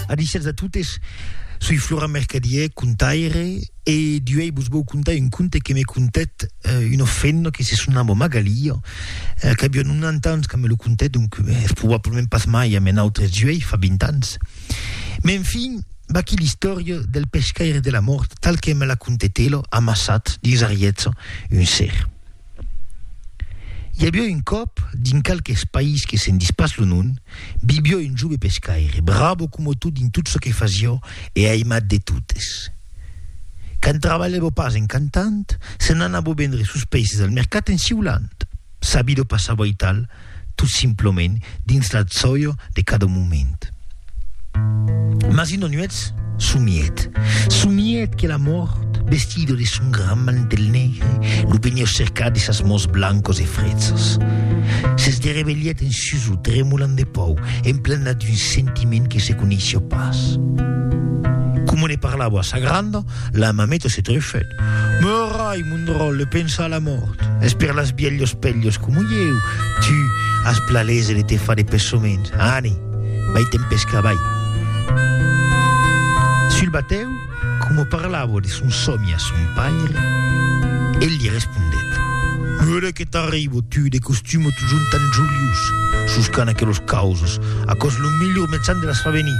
Adisètz a totes, soi Florent Mercadier, contaire, e d'uèi vos vòu contar un conte que me contèt una femna que se sonava Magalia, qu'aviá 90 ans quand me lo contèt, donc es probablament pas mai ame nautres d'uèi, fa 20 ans. Me en fin, vaquí l'istòria del pescaire de la mòrt tal que me la contèt ela, amassat dins ariètza un ser. I aviá un còp, dins qualques país que se'n dis pas lo nom, vivió un jove pescaire, bravo coma tot dins tot çò que fasió e aimat de totes. Quand trabalhavo pas en cantant, se n'anavo vendre sos peises al mercat en siulant. Sa vida o passavo aital, tot simplement dins la tsoio de cada moment. Mas una nuèch somièt, somièt que la mòrt, vestida de son gran mantel negre, lo veniá cercar de sas mans blancas e fretzas. S'esderevelhèt en suso, tremolant de paur, emplenat d'un sentiment que se coneissiá pas. Coma ne parlava a sa granda, La mameta se trefèt. Meurai, mon dròlle, pensa a la mòrt. Es per las bielhos pelhos coma ieu, tu, as plaléser de te far de pessoments. Ani, vai te'n pescar, vai. Sul batèu, coma parlava de son sòmi a son paire, el li respondèt. Meurai que t'arribo, tu, de costum o totjorn tan joliós, suscant aquelos causos, aquò's lo melhor metzan de las far venir.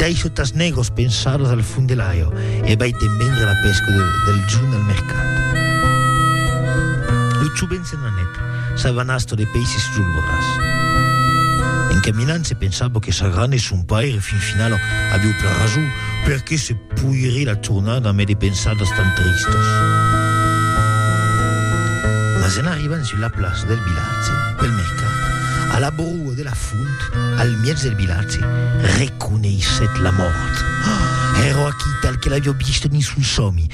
Dai sotas negros pensados al fund de l'aio e vai te'n vendre la pesca de, del junt al mercat. Lo jovent se'n anet, s'avanastò de peisses julvoras. En caminant se pensavo que sa gran e son paire fin finalo aviu plan rason, perqué se poirie la tornar damb e de pensados tan tristos. Mas en arribant sus la plaça del vilatge, del mercat, a la bro Au de la font, al mièg del vilatge, reconeissèt la mòrt. Èrò aquí, tal que l'avió vist dins son sòmi.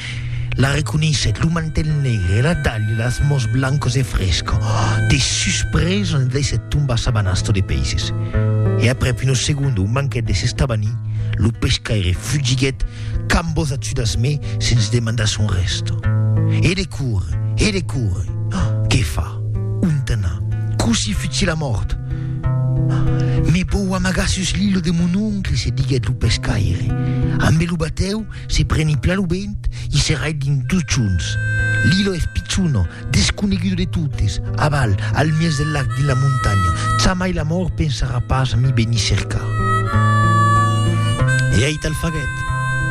La reconeissèt, lo mantèl negre e la dalha, las mòns blancos e fresco. De suspresa, ne daissèt tombar sa banasta de peisses. E aprèp una segonda o manquèt de s'estavanir, lo pescaire fugiguèt, Quand vos achudas me sens demandar son resto. E de cour, e de cour. Qué fa? Ont anar? Cossí fuchi la mort? Me vou amagar sus l'ilo de mon oncle, se diguèt lo pescaire. Ambe lo batèu, se preni pla lo vent, i se rait dins dos chons. L'ilo eth pichon, Desconegudo de totes, aval, al mièg del lac dins la montanha, jamai la mòrt pensarà pas a mi venir cercar. E aital faguèt.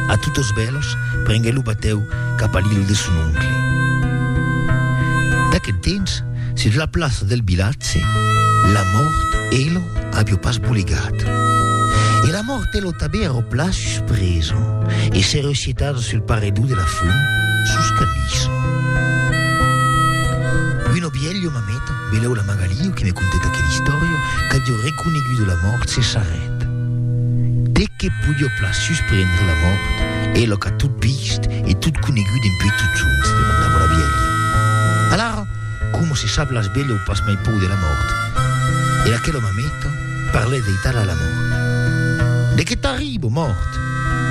A totes bèlas, prenguèt lo batèu cap a l'illa de son oncle. D'aquel temps, sus la plaça del vilatge, la mòrt e lo avió pas bolegat. E la mòrt e lo. Tabé ero pla suspresa e se recitada sul paredó de la font sos cadís. Un obielho mameta, beleu la Magalio que me contèt aquela istòria, qu'adio reconegudo la mòrt se s'arrèt. Te que podio pla susprendre la mòrt, elo qu'a tot vist e tot conegut dempuèi totjorns? demandava la bielha. Alara, coma se sap las beleu pas mai pòu de la mòrt. Era aquela mameta, Parlè dei tala la mòrt. De que t'arribo, mòrt?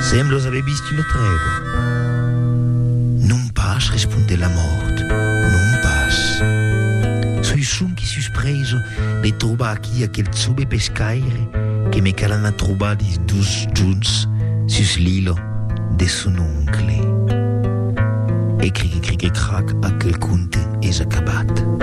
Semblos aver vist una trèva. Non pas, respondè la mòrt, non pas. Soi sonque suspreso de trobar aquí aquel chove pescaire que me cal anar trobar dins dos jorns sus l'ila de son oncle. E cric-e-cric-e-crac, aquel conte es acabat.